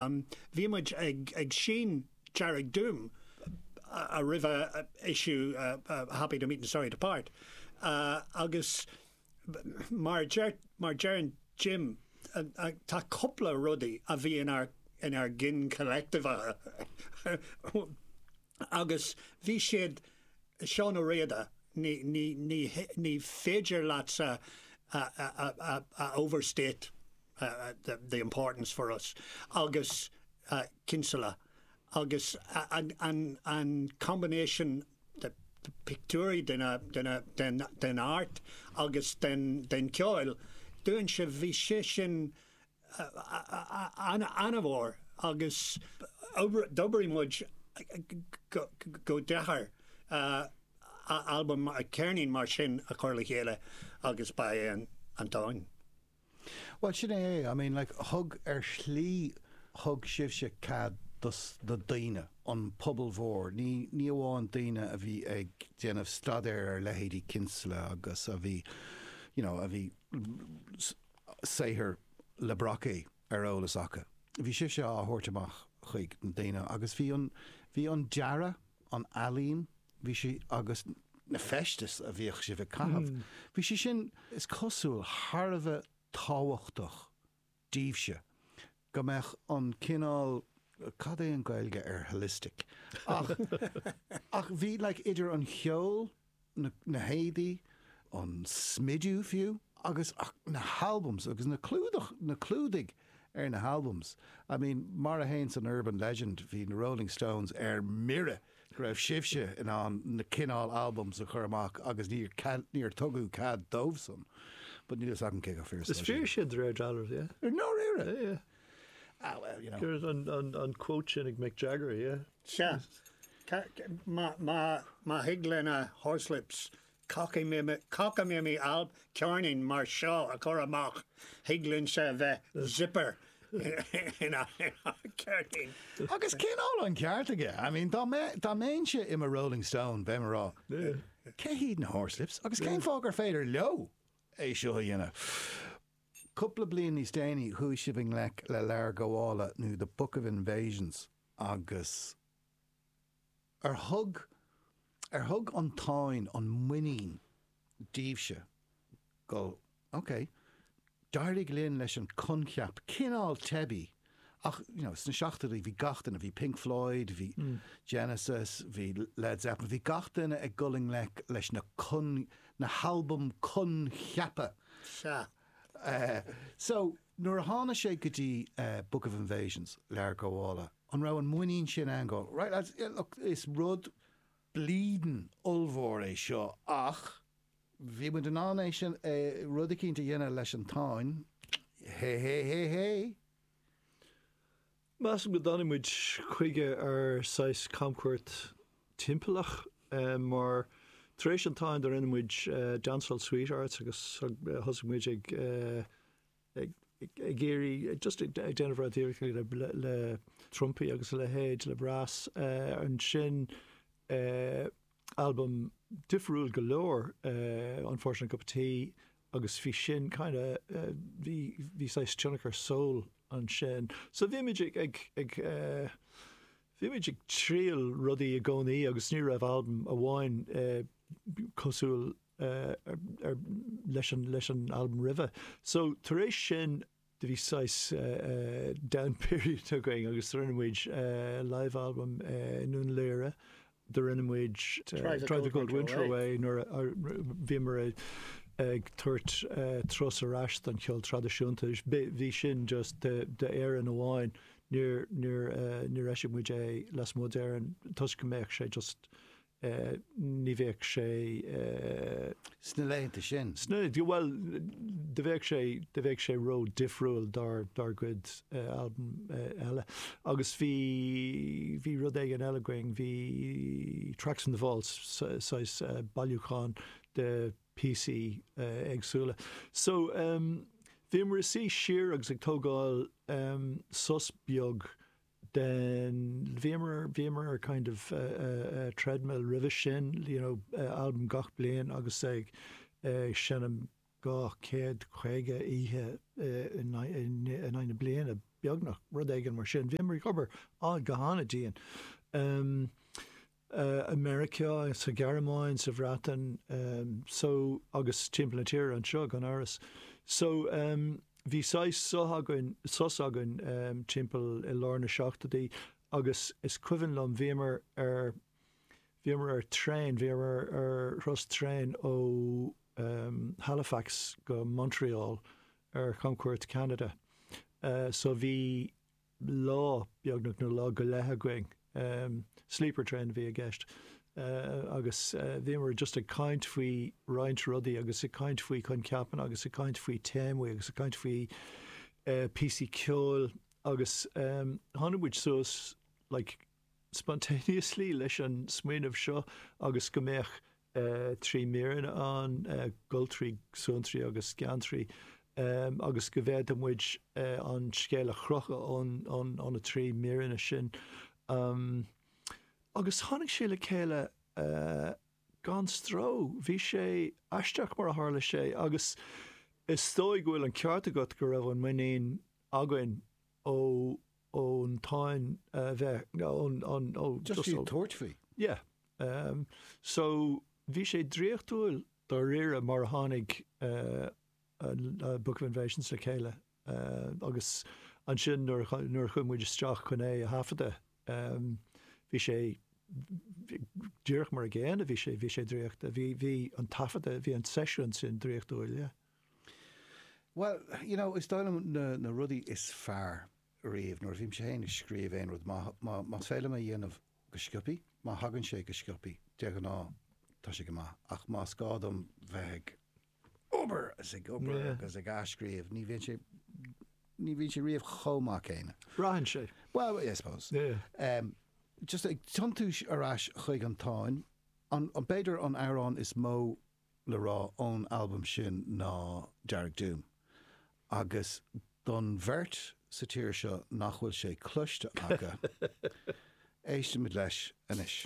Bhí muid ag Sean Dearg Doom roimh a issue Happy to meet and sorry to part agus mar deireann Jim tá cupla rudaí a bhí inár gcinn collective-acha agus bhí siad Seán Ó Riada ní féidir leatsa a overstate the importance for us agus Kinsella agus an combination de pictiúirí den art agus den ceol dúinn so bhí sé sin an-mhór agus d'oibrigh muid go deacair albam ceirnín mar sin a chur le chéile agus ba é an an Bhuel, sin é é. I mean, like, thug, ar shlí, thug sibhse cead do, do daoine, an pobal mór, ní, ní amháin daoine a bhí ag déanamh staidéir ar leithéidí Kinsella agus a bhí, you know, a bhí saothar le Brocquy ar eolas acu, bhí sibhse á thabhairt amach chuig na daoine agus bhí an, bhí an dearadh, an ealaín, bhí sé, agus na feistis a bhíodh sibh a chaitheamh, bhí sé sin, is cosúil, thar a bheith tábhachtach daoibhse, go mbeadh an cineál, cad é an Gaeilge ar holistic? ach, ach bhí like idir an cheol, na héadaí, an smidiú fiú, agus na halbums agus na clúdach, na clúdaigh ar na halbums. I mean, mar a théann an urban legend, bhí na Rolling Stones ar mire go raibh sibhse in ann na cineál albums a chur amach agus níor tugadh cead dóibhsan. But níl fhios agam cé chomh fíor is atá sin. Is fíor sin de réir dealraimh, yeah. Ar ndóigh, yeah. Ah, well, you know. An quote sin ag Mick Jagger, yeah. Sea, má thig le na Horslips, cáca mimi alb ceirnín mar seo a chur amach, thig linne a bheith zipper ina cheirnín. Agus cineál an ceart aige. I mean, dá mbeinnse i mo Rolling Stone, bheadh mé ag rá, cé hiad na Horslips agus cén fáth gur féidir leo é seo a dhéanamh? Cúpla bliain níos déanaí, chuaigh sibh i ngleic le Leabhar Gabhála nó The Book of Invasions. Agus ar thug, ar thug an Táin an muinín daoibhse go, ok, d'éirigh linn leis an coincheap cineál teibí ach, you know, sna seachtóidí bhí gach duine, bhí Pink Floyd, bhí Genesis, bhí Led Zeppelin, bhí gach duine ag dul i ngleic leis na con, na halbaim coincheapa. Sea. Eh, so. Nuair a thána sé go dtí Book of Invasions, Leabhar Gabhála, an raibh an muinín sin ann go, right lads, yeah look, is rud bleedin' ollmhór é seo ach bhí muid in ann é sin, é, rud éicint a dhéanamh leis an Táin, hé hé hé hé? Measaim go dtáinig muid chuige ar saghas camchuairt timpeallach mar tar éis an táin do rinne muid Dancehall Sweethearts agus thosaigh muid ag ag iarraidh just ag déanamh rud difriúil le trumpaí agus a leithéid le brass ansin. Albam difriúil go leor é Unfortunate Cup of Tea agus bhí sin kind of, bhí, bhí saghas tionchar soul ansin. So bhímid ag, ag, ag eh, bímid ag triail rudaí i gcónaí agus ní raibh albam amháin cosúil eh, ar, ar, leis an, leis an albam roimhe. So tar éis sin, do bhí saghas down period againn agus do rinne muid live album i nDún Laoghaire, do rinne muid Drive the Cold Winter Away nuair a bhíomar ag tabhairt turas ar ais don cheol traidisiúnta, bhí sin just d'Éirinn amháin, níor eisigh muid é lasmuigh d'Éirinn toisc go mbeadh sé just. ní bheadh sé. Sna laethanta sin. Sna, bhuel, do bheadh sé, do bheadh sé ró difriúil dár, dár gcuid albam eile. Agus bhí, bhí rud éigin eile againn, bhí Tracks from the Vaults, saghas bailiúchán de píosaí éagsúla. So, bhíomar ag suí siar agus ag tógáil sos beag den, bhíomar, bhíomar ar kind of treadmill roimhe sin, you know albam gach bliain agus ag seinm dhá chéad caoga oíche in aghaidh na bliana beagnach, rud éigin mar sin. Bhíomar ag obair go han-dian. i Meiriceá, sa Ghearmáin, sa Bhreatain, so agus timpeall na tíre anseo gan amhras. So, bhí saghas so- againn, sos againn timpeall i lár na seachtóidí agus is cuimhin liom bhíomar ar, bhíomar ar traein, bhíomar ar thuras traein ó Halifax go Montreal ar chamchuairt Cheanada. So bhí. Lá, beagnach na lá go leith againn. Sleeper train a bhí i gceist agus bhíomar just ag caint faoi roinnt rudaí agus ag caint faoi choincheapanna agus ag caint faoi téamaí agus ag caint faoi píosaí ceoil agus tháinig muid suas like spontaneously leis an smaoineamh seo agus go mbeadh trí míreanna ann, Goltraí, Suantraí agus Geantraí, agus go bhféadfadh muid an scéal a chrochadh ó na trí míreanna sin. Agus tháinig sé le chéile gan stró. Bhí sé aisteach mar a tharla sé agus is dóigh go bhfuil an ceart agat go raibh an muinín againn ó. ón Táin a bheith, ón, ón, ó, Just iad tabhairt faoi. Yeah. Um, so bhí sé draíochtúil dáiríre mar a tháinig, uh, an, uh, Book of Invasions le chéile, uh, agus ansin nuair a, nuair a chuaigh muid isteach chun é a thaifeadadh, um, bhí sé, díreach mar a gcéanna bhí sé, bhí sé draíochtúil. Bhí, bhí an taifeadadh, bhí an seisiún sin draíochtúil, yeah. Bhuel, you know, is dóigh liom na rudaí is fearr riamh nuair a bhímse féin ag scríobh aon rud, más féidir liom é a dhéanamh go sciopthaí, má thagann sé go sciopthaí, de ghnáth tá sé go maith, ach más gá dom bheith ag obair is ag obair agus ag athscríobh, ní bhíonn sé, ní bhíonn sé riamh chomh maith céanna. Braitheann sé. Well, I suppose. Just ag tiontú ar ais chuig an Táin, b'fhéidir an amhrán is mó le rá ón albam sin ná Dearg Doom agus don bheirt sa tír seo nach bhfuil sé cloiste acu, éistimid leis anois.